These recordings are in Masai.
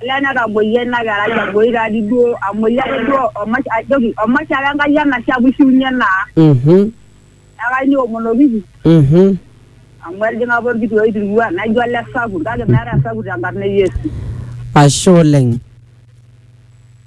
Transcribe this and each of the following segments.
Olee netamoyia ina kerai aboi taadi duo amoyia ake duo omash ajoki omash ake Enkai enashe amu ishiunye naa. Mhm. Neeku ayieu niomonokiki Mhm. amu etijing'a apa orkiti oitirua naijo ole sapuk kake meetae osapuk tenkarna e Yesu. Ashe oleng.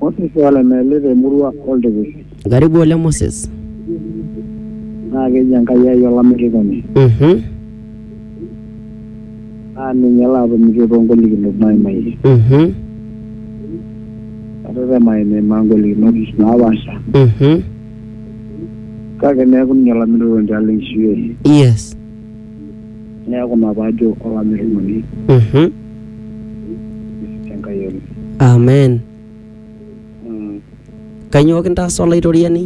Moses Walemeli te murua Oltipish. Karibu oleng Moses. Naa keji Enkai ai olamirikoni. Mhm. Naa ninye laatomitie too ngolikinot naaimayie. Mhm. Atetema aimimaa ngolikinot naapaasha Mhm. kake neeku ninye olamirikoni tialo enkishui ai. Yes. Neeku ina paajo olamirunoni Mhm. tenkai oleng. Amen. Mm. Kanyoo kintaasa Olaitoriani?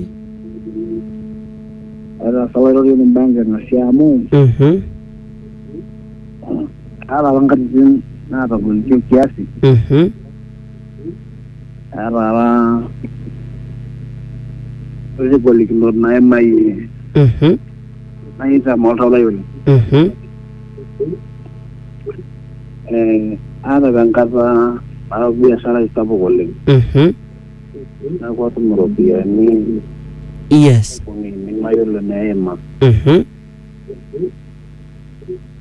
Etaasa olairorioni imbaa enking'asia amu Mhm. aata apa nkatitin naatagolitie kiasi Mhm. aata apa kuti golikinot naimayie Mhm. naitam oltau lai oleng Mhm. Eh, aata apa enkata nara biashara ai sapuk oleng Mhm. neeku atum iropiyiani Yes. kumi nemayiolo neima Mhm.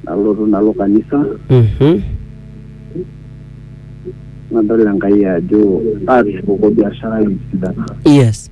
nalotu nalo kanisa Mhm. nadol enkai ajo atushukuko biashara ai esidana Yes.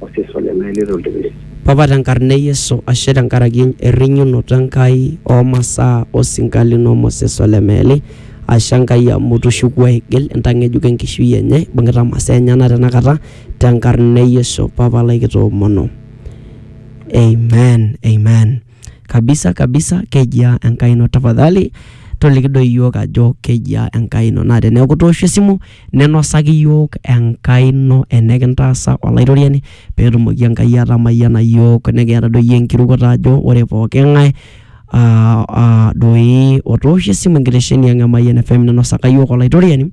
osesen le meeli to ltipilit. Papa te nkarna e Yesu ashe te nkaraki errinyunoto e Nkai oo masaa o sinka lino Moses ole meeli. Ashe Enkai amu itushukuo aigil intang'ejuk enkishui enye ibung'ita masaa enyena tena kata te nkarna e Yesu papa lai kitoomono. Amen, Amen. Kabisa kabisa kejia Enkai ino tafadhali toliki doi iyiook ajo kejia Enkai ino naa teneeku itoosho esimu ninosaki iyiook Enkai ino enikintaasa Olaitoriani peetumoki Enkai atamayiana iyiook nikiata doi iyiook enkirukoto ajo ore pooki ng'ae aa aa doi otoosho esimu enkitesheni ang' e Mayian FM ninosaka iyiook Olaitoriani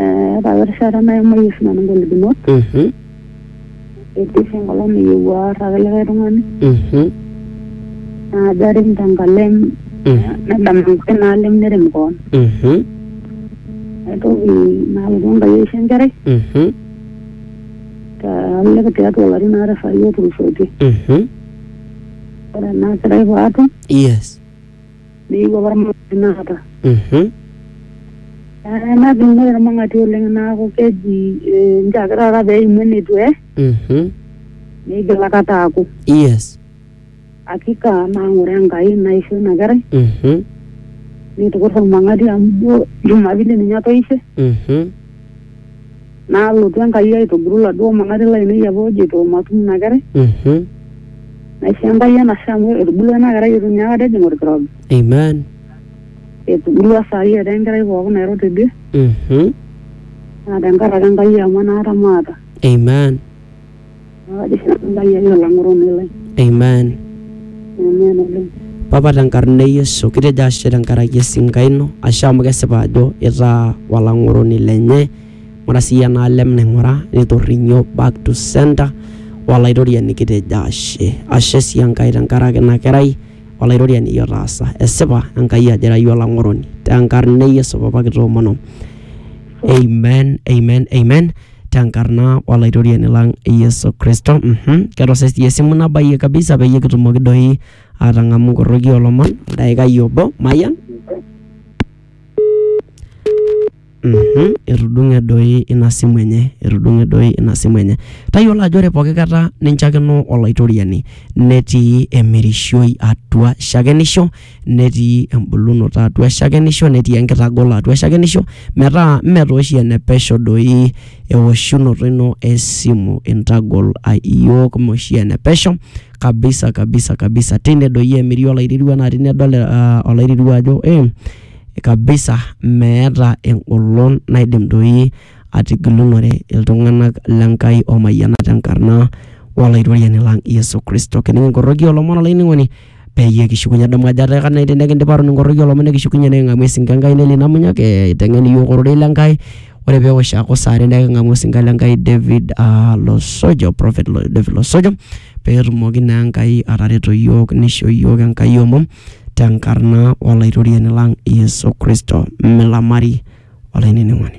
Eh, ore erishata naimayie oshi nanu ingolikinot Mhm. etii oshi enkolong niyieu aar ake likae tung'ani Mhm. naajo arem tenkalem Mhm. nedam enkae naalem nerem koon Mhm. naitoki nalotu enkai aisho enkerai Mhm. taalelek tiatua ilarin aare saai otulusoitie Mhm. ore ena kerai paatum Yes. meyieu apa irmang'ati inakata. Mhm. Eh, Natum ore irmang'ati oleng naaku keji eh, nche ake taata peimu enetu eh, Mhm. meigil akata aaku. Yes. Hakika naang'ore Enkai naisho ina kerai Mhm. nitukurra ormang'ati amu ijo Jumapili ninye atoishe. Mhm. Nalotu Enkai aitobiru laduo manati lainei apa ojito matum ina kerai. Mhm. Naisho Enkai enashe amu etubulua ena kerai eitu ninye aikata ejing olkirobi. Amen. Etubulua saai etaa enkerai pooki nairo tidie Mhm. naa tenkaraki Enkai amu enaata maata. Amen. Amen. Papa tenkarna e Yesu kitejo ashe tenkaraki esinka ino ashe amu kesipa ajo itaa olang'oroni lenye ng'ura sii enaalem naing'ura nitorrinyo back to center olaitoriani kitejo ashe ashe sii Enkai tenkaraki ina kerai olaitoriani iyie otaasa esipa Enkai ajo ira iyie olang'oroni tenkarna e Yesu papa kitoomono amen amen amen tenkarna olaitoriani lang Yesu Kristo. Mhm. Ketose sii esimu nabayie kabisa peyie kitumoki doi atang'amu nkorroki olomon daikai obo mayian. Mhm. Etudung'e doi ina simu enye, etudung'e doi ina simu enye. Tayiolo ajo ore pooki kata ninchakeno olaitoriani netii emirishoi atua shakenisho netii embulunoto atua shakenisho netii enkitagolo atua shakenisho metaa mme taa oshi ene pesho doi ewoshunoto ino e simu intagol iyiook mme oshi ene pesho kabisa kabisa kabisa. Tine doi emiri olairirua naa tine edol olairirua ajo ee kabisa meeta engolon naidim doi atigilunore iltung'anak le Nkai omayianat te nkarna o Olaitoriani lang' Yesu Kristo. Kinikinkordoki olomoni olainining'oni peyie kishukunye adamu ajo etaa kenya tenikindipa atoni inkoroki olomon nikishukunye niking'amu esinka Enkai nelei Namunyok eh eiteng'en iyiok ororei le Nkai ore pewosh aaku saa are neking'amu osinka le Nkai David uh Losojo prophet David Losojo petumoki naa Enkai atareto iyiok nisho iyiok Enkai omom tenkarna olaitoriani lang Yesu kristo milamari olainining'oni.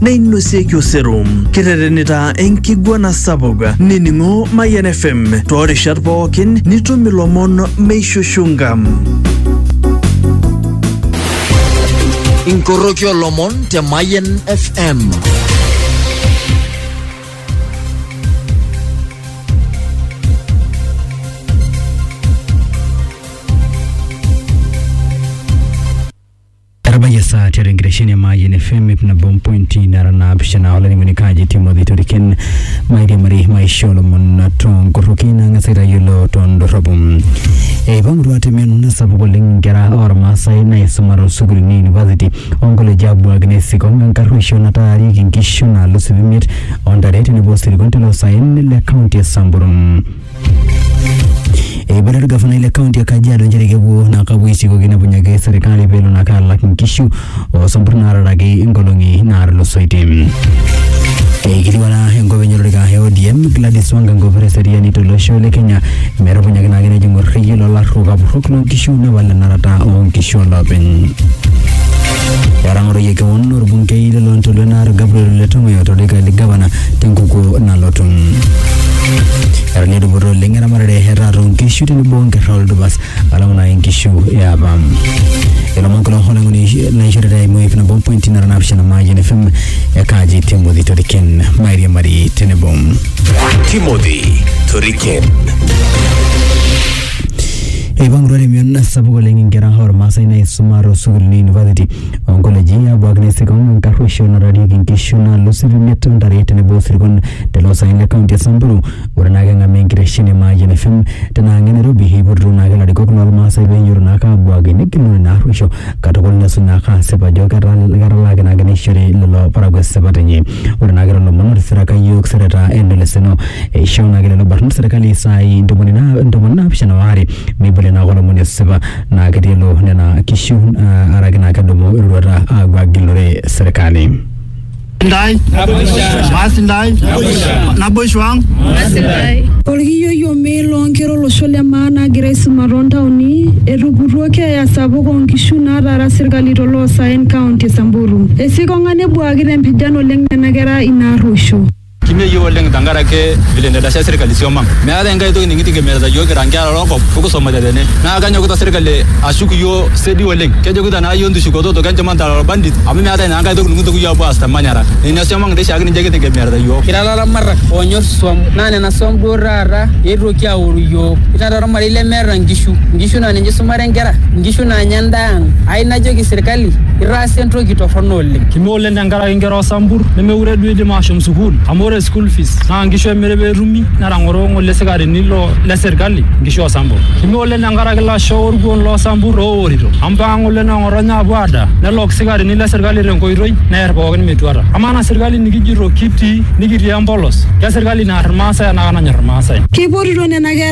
neinosieki osero. Kiterenita enkiguana sapuk nining'o Mayian FM toorishat pookin nitum ilomon meishushunga. Inkoroki olomon te Mayian FM. Etabayie esaa tiatua enkitesheni e Mayian FM ip nabo ompointi nara naapishana olainining'oni kaji Timothy Toriken mairiamari maisha olomon toonkorroki nang'as aitayiolo tondorropu. Eipang'utua te mion sapuk oleng inkera ormaasai naisuma toosukuulini e university onkoleji abuak nesikong enkarruoisho nataarieki inkishu naalus ip imiet ontare tenebo osirkon tele osaen le kaunti e Samburu. Eibalie orgavanai le kaunti e Kajiado nchere kepuo naa kapuo aisikoki nepunyaki serikali pelo naa kaalak inkishu oosompur naataraki inkolong'i naatulusoitie. Eikiliwana enkop enye olorika e ODM Gladys Wanga enkop eseriani tolosho le Kenya metupunyaki naake nejing orrekie lolarruok apurrok loonkishu nepal enarata oonkishu olopeny. Etang'oroyie kewon orbungei lelo ntoluo naar Gabriel Letong'oyo tolorika le gavana tenkukuo nalotu. Etanya dupoto oleng eramatare etaata oonkishu tenebo onkerra oldupas alang naa inkishu eapa. Ilomon kulo olang'oni naishorita eimu ip nabo pointi nara naapishana Mayian FM ekaaji Timothy Toriken mairiamari tenebo. Timothy Toriken. Eipang'utua te mion sapuk oleng inkera ormaasai naisuma toosukuulini e university onkoleji abuak naa isirkon enkarruoisho natarieki inkishu naalus irimiet ontare tenebo osirkon tele osaen le kaunti e Samburu. Ore naake eng'amu enkitesheni e Mayian FM tina ang' e Nairobi eipotutuo naake ilarikok lormaasai peinyototo naake abuak negilunore ina arruoisho katukul nesuj naake asip ajo ketala ketalaaki naake neishori lelo parakuo esipata enye ore naake lelo omon otisiraka iyiook sereta eneleseno eishoo naake lelo barnot serkali isaai ntomoni naa ntomoni naapishana waare meibolie naake olomoni esipa naa ketii elo nena kishu uh, araki naa kedumu eroruata aapuo agilore serkali. ndai maasi ndai naboisho ang Olkiyioi omee loonkera olosho le maa naagira aisuma toontaoni etuputuo keeya sapuk oonkishu naataara serkali toloosaen kaunti e Samburu. Esikong'a nebuaa Etuuduaki te mpijan oleng nena kera ina arruosho. Kimeyieu oleng tenkaraki vile nedasha serkali siom ang. Meetae enkae toki nikitegemearita iyiook kira nkera loo nkop o kisomate tene. Naa kenyokita serkali ashuk iyiook sedi oleng. Kejokita naa iyiook ntushukototo kenchumana te lelo bandits amu meetae naa enkae toki nikintoki iyiook aapuo aas te manyara. Nena siom ang doi oshiake ninche kitegemearita iyiook. Kira ilaramatak oonyor isuom naa nena suom duo taata eetuoki aoru iyiook. Kira taa olmarei lemeeta nkishu. Nkishu naa ninche isumare nkera. Nkishu naanya endaa ang. Ayieu najoki serkali itaasa entoki torrono oleng. oleng. Kime oleng tenkaraki nkera osampur nemeure duo eidim aashom sukuul amu ore school fees naa nkishu emiri pee etumi netang'oro ng'ole sikarini lo le serkali nkishu oo sampur. Kime oleng tenkaraki lasho o lkuon loo sampur ooworito amu mpaka ng'ole noo ng'otonye aapuo aadaa nelok sikarini le serkali te nkoitoi neer pookin metuata. Amaa ena serkali nikijito kitii nikitii empolos ke serkali naar ilmaasai enaa kenanyor ilmaasai. Keipotito nena kera.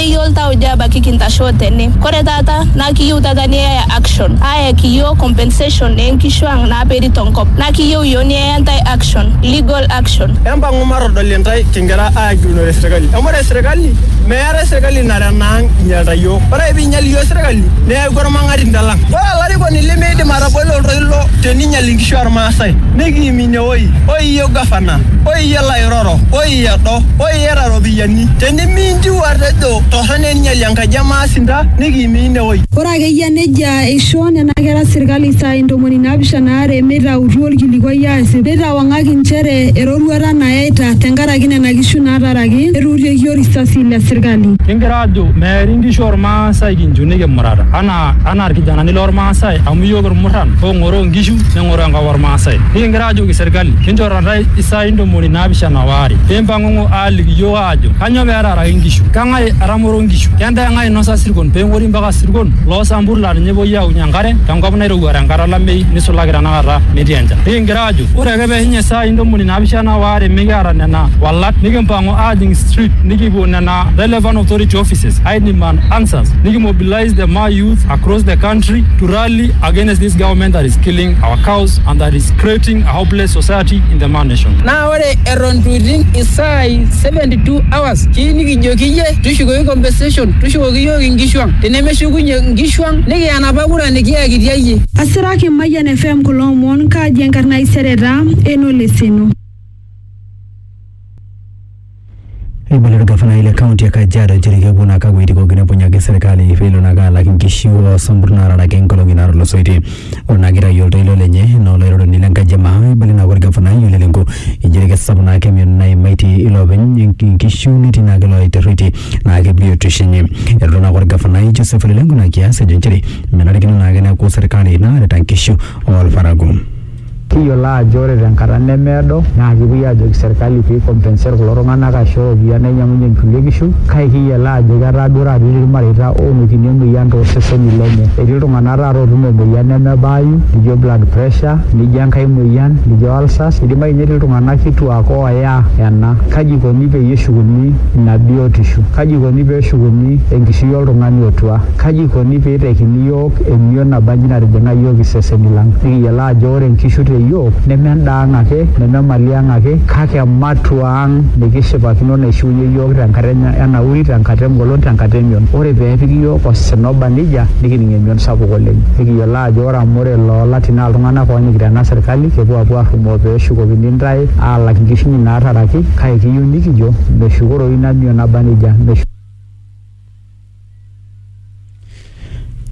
Keyieu iltauja ebaki kintashoo tene. Kore taata naa kiyieu taata niyaya action ayaki iyiook compensation ee nkishu ang naaperi to nkop. Naa kiyieu iyiook niyaya intae action, legal action. Empang'u matodol intae kingira aagilunore serkali. Amu ore serkali meetae serkali nara enaang inyalita iyiook. Ore ake pee einyal iyiook serkali neaku olmang'atinda lang. Ore olarikoni lemeidim atabolo oltoilo teneinyal inkishu oo Lmaasai nikiimie oi, oi iyie olgavana, oi iyie lairoro, oi edo, oi. iyata ropiyiani tenimintiu atejo torrone ninyali enkaji emaasinta nikiimii inewoi Ore akeyia nejia eishoo nena kera serkali isaai ntomoni naapishana are meitautu olkilikuai aasip neitawang'aki nchere eroruata nayaita tenkaraki nena kishu naataraki etuutieki orisasi le serkali. Kingira aajo meeri nkishu oolmaasai kinchu nikimurata anaa anaa ilkijanani loolmaasai amu iyiook ilmurran oong'oroo nkishu neng'oroo enkop olmaasai. Nikingira aajoki serkali enchoo taata isaai Ilisai ntomoni naapishana o are. Pee impang'ong'o aaliki iyiook aajo, Kanyoo pee etaaraki nkishu? Keng'ae etamoro nkishu? Kendaa eng'ae einosa isirkon pee eng'ori mpaka isirkon loo sampur laa ninye epuoi aaokunye enkare te nkop nairowua te nkata olameyu neisulaki tena kata metii enchan? Nikigira aajo, Ore ake pee eishunye isaai ntomoni naapishana o are mikiata nena walat nikimpang'u aajing street nikipuo nena relevant authority offices ai demand answers nikimobilise the Maa youth across the country to rally against this government that is killing our cows and that is creating a hopeless society in the man nation. Naa ore eton itu iting isaai 72 hours kii nikijoki iyie tushukoki compensation tushukoki iyiook inkishu ang. Tenemeshukunye inkishu ang nikiya enapa kura nikiyakitia iyie. Asiraki Mayian FM kulo omon kaji enkarna ai sereta eno leseno. Eibulo olgafanai le kaunti e Kajiado nchere kepuo naa kakuaiti pooki nepunyaki serkali pelo naa kaa alak inkishu oo sambur naararaki inkolong'i naatulusoitie. Ore naa keitayu oltoilo lenye enaa olairoroni le nkaji e maa eibala naa olgafanai Ole Lenku inchere kesapuk naa ake emion naimaitie iloopeny inkishu netii naa ake ilooitarrueitie naa ake biotisho enye. Elotu naa ake olgafanai Joseph Ole Lenku ina kias ejo inchere menarikino naa ake neeku serkali naarita inkishu oo lparakuo Kiyiolo aajo ore tenkata nemeedo naa kepuoi aajoki serkali pee compensate kulo tung'anak aisho iropiyiani nainyiang'unyie inkulie kishu kake kiyiolo aajo etaa duo taata etii irmareita oonotito emuoyian tooseseni lenye. Etii iltung'anak taata ootuno emuoyian nemebaayu nijo blood pressure nijo enkae muoyian nijo ulcers, idimayu ninye netii iltung'anak kituaak ooya ena. Kaji ikoni peyie eshukuni ina biotisho? Kaji ikoni pee eshukuni enkishui oltung'ani otua? Kaji ikoni pee itekini iyiook iyiook emion nabanji natijing'a iyiook iseseni lang. Nikiyiolo aajo ore nkishu te iyiook neme endaa ang ake, neme mali ang ake kake ematua ang nikishipakino naishiunyie iyiook tenkata e nauri, tenkata e ngolon, tenkata e mion. Ore pee epiki iyiook osina oba neijia nikining emion sapuk oleng. Nikiyiolo aajo ore amu ore loo latii naa iltung'ana oonyikita ena serkali kepuo aapuo aarrumoo pee eshukokini intae aalak nkishu inyi naataraki kake kiyieu nikijo meshukoroyu ina mion naba neijia.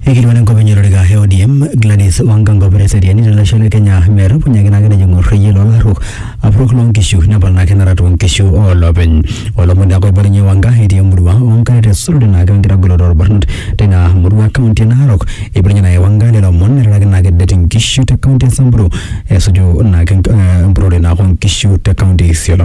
Eikilikuana enkop enye olorika e ODM Gladys Wanga Ngobere Seriani tolosho le Kenya metupunyaki naa nejo ng'or reyiet lolarruok apurrok loonkishu nepal naa kenara toonkishu oolopeny. Olomoni naa oibalunye Wanga etii emurua oonkare te Sulurit naa wenkitagoloto oolbarnot teina murua e kaunti e Narok. Eibalunye naake Wanga lelo omon eiroraki naake det inkishu te kaunti e Samburu esuju naake empurrore naake oonkishu te kaunti e Isiolo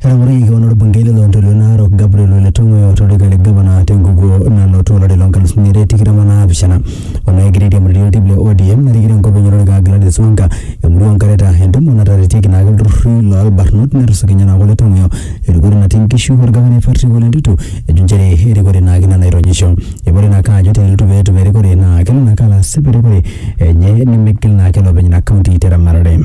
Etang'oroyioki kewan olbungei le Lontoluo Narok Gabriel Ole Tong'oyo tolorika le gavana tenkukuo nalotu olari loo nkalusuni are tikitam o naapishana o naa egira airiamariyie oltim le ODM narikito enkop enye olorika Gladys Wanga emurua oo Nkareta entumo nataretieki naake ilturrurri loo lbarnot netusukunye naake Ole Tong'oyo erikore natii nkishu olgavanai Patrick Ole Ntutu ejo nchere erikore naake ina naironyisho. Eibala naake ajo teneitu apa etum erikore naa kelo naake alo asip erikore enye nemeigil naake elo openy ina kaunti te ramatare.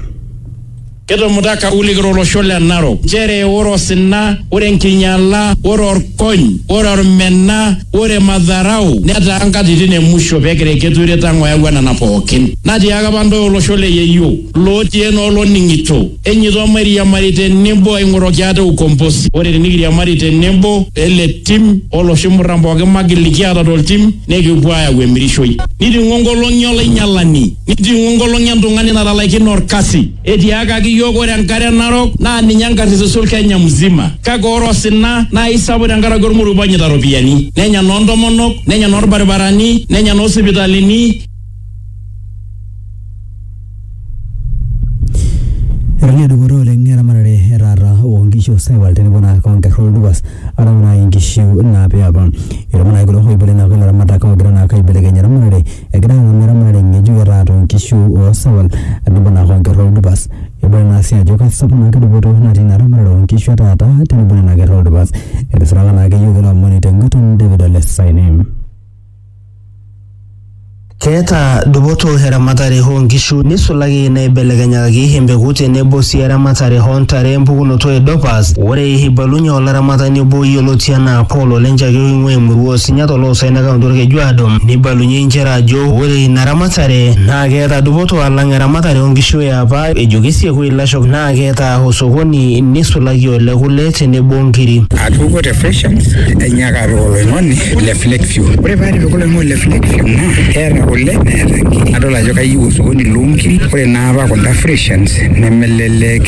Ketumuta Kulik to losho le Narok nchere ore osina, ore enkinyala, ore orkony, ore ormena, ore madharau netaa nkatitin e musho pee egira Eketure Tang oyawua nena pooki. Natiaaka apa ntae olosho le yeyio lootii ene oloning'ito enyeito mairiamari te nebo aing'oroki ate ukombosi. Ore tinikiriamari te nebo ele tim o loshi murran pooki magil likiata to ltim nikipuo aayau emirishoi. Niting'o nkolong'i o lainyalani. Nijing'u engolong' e ntung'ani natalaikine olkasi. Etiaakaki iyiook ore enkare narok naa ninye enkarrisis o Kenya mzima. Kake ore osina naa eisapuk tenkaraki olmoruo onyaita iropiyiani. Nenya noo ntomonok, nenya noo lbaribarani, nenya noo sipitalini. Etadie dupoto oleng eramatare e taata oo nkishu o saiwal tenebo naa o nkerra o ldupas arashu naa inkishu naapa e apa. Etumo naa kulo oiboitare naa kulo aramatak oogira naake aibelekeny eramatare Egira ang'amu eramatare ng'ejuk e taata oo nkishu oo sawal tenebo naa hoo nkerra oo dupas. Ebala naa sii ajo keisapuk naa dupoto natii ina ramatare oo nkishu e taata tenebo nena kerra oo dupas. Etisiraka naake iyiook ilo omoni te nguton David Ole Saine. Keeta dupoto eramatare hoo nkishu neisulaki naaibelekenyakaki empeku tenebo sii eramatare hoo ntare empukunoto e dopas. Ore Eibalunye olaramatani obo yioloti anaa Paul Olenchaki oing'ua emurua Osinya toloosai le kaunti Olkejuado neibalunye inchere ajo ore ina ramatare naa keeta dupoto alang eramatare oo nkishu e apa ejo kesieku ilashok naa keeta osokoni neisulaki ole kule tenebo o nkiri. Atupukuo te Freshans ainyaaka apik oloing'oni le Flakeview. Ore pee atipika oloing'oni le Flakeview naa keeta kule neeta nkiri. Nadol ajo kayieu osokoni loo nkiri. Ore naa apa kunda Freshans nemelelek.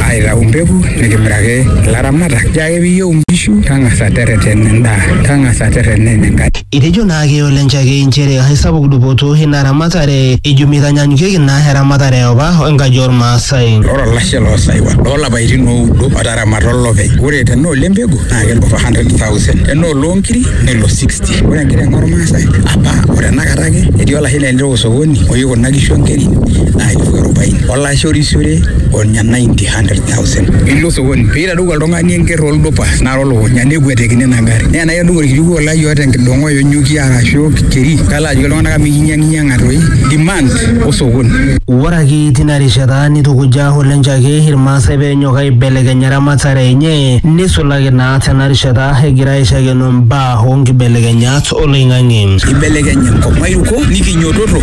aitau mpeku nikimiraki ilaramatak. Nchoo ake piiyieu nkishu tang'asa tereten endaa, tang'asa tereten enenkai. Etejo naake Ole Nchakei nchere aisapuk dupoto ina ramatare ejo meitanyanyukieki ina eramatare eopa o enkaji oolmaasai. Ore olashe loo saiwal loo lapaitin ooudo otaramata olopeny, ore tenaa ole mpegu naa kelo 400,000, tenaa oloo nkiri nelo 60. Ore enkiteng olmaasai apa o tenakata ake etii olashe lenye osokoni oyieu kuna kishu o nkeri naa elfu arobaini. Kaishorishore ornya 900,000. Ilo sokoni pee eitadou oltung'ani enker oldupa nara olukunya nekuetekini ina gari. Naa enaa kedung orkiliku olai oota enkidong'o enyuki arashu keri kalo ajoki iltung'ana amu ikinyiang'inyiang'a toi demand osokoni. Ore ake tina rishata neitukuja Ole Nchake Ilmaasai pee enyok aibelekeny eramatare enye neisulaki naa tena rishata egira aishakeno mbaa oo nkibelekenyat oloing'ang'e. Eibelekenye enkop mairukok nikinyototo.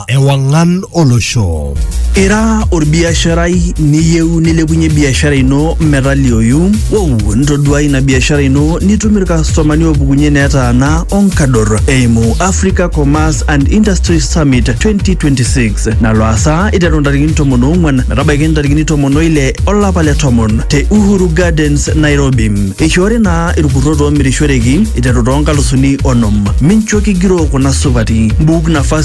Ewang'an olosho. Ira orbiasharai niyieu nilepunye biashara ino metalioyu? Wow, ntoduai ina biashara ino nitum irkastomani oopukunye netaana onkador eimu Africa Commerce and Industry Summit 2026 nalo aasa iteru ntarikini tomon oong'wan metabaiki ntarikini tomon oile olapa le tomon te Uhuru Gardens, Nairobi. Eishoori naa irkurrot oomirishoreki iteru toonkalusuni onom. Mincho kigiroo kuna supati. Mbuuk nafasi